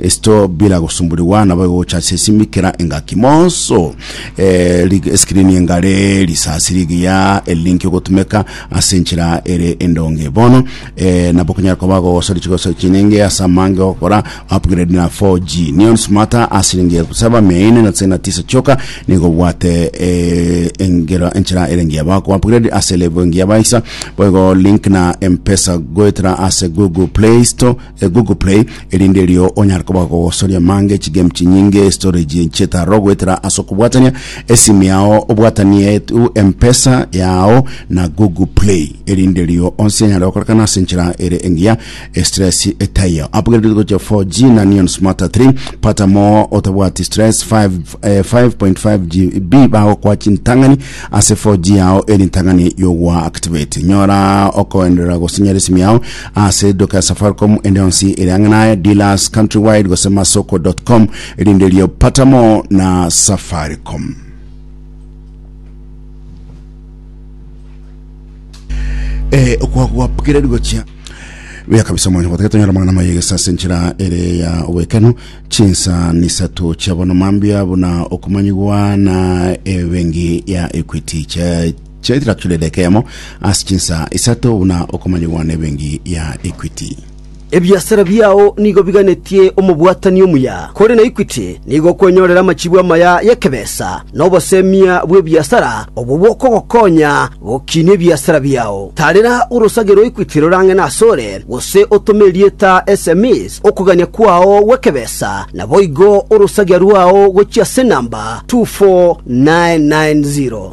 Esito bila gosumburigwa nabo egocha ase esimi kera engaki moso eh, lig- eskrini engare risasi rigiya elinki ogotumeka ase enchera ere endonge bono eh, nabo okonyara koba gogosori chigosori chinenge ase amange ogokora upgrade na 4G neon smarta asiringi elfu saba mia ine na tisini na tisa choka nigo obwate eh, engero enchera ere engiya bako upgrade ase level engiya baisa boigo link na mpesa goetera ase google play store Google Play, erinde erio onyare koba gogosoria mange chigame chinyinge storage chetaro goetera ase okobwatania esimi yao obwatanie tu mpesa yao na Google Play erinde erio onsi enyare gokorekana ase enchera ere engiya stress etaiyo upgrade gocha 4G na Neon Smart 3 pata mo otabwati stress 5 eh, 5.5 GB bagokwa chintang'ani ase 4G yao eri ntang'ani yogwa activate nyora okoenderera gosinyera esimi yao Ase eduka ya Safaricom ende yonsi ere ang'e naye, Dealers, Countrywide gose Masoko.com, rinderio Pata More na Safaricom. Eh, okwa gwapokire rigochia buya kabisa mwana gotaka tonyora mangana maye gesase nchira ere ya wekeno chinsa nisatu chiabono mambia buna okumanyigwa na ebengi ya equity cha Chaichera kera edeka eyemo ase chinsaa isato buna okomanyigwa nebenki ya Equity. Ebiasara biao nigo biganetie omobwatani omuya, kore na Equity nigo okwenyorera amachibu amaya y'ekebesa na obosemia bw'ebiasara obwo bokogokonya gokinia ebiasara biao. Tarera orosage rwa Equity rorang'ene asore, gose otome erieta sms okogania kwao gw'ekebesa, naboigo orosagia rwao gochia ase enamba 24990.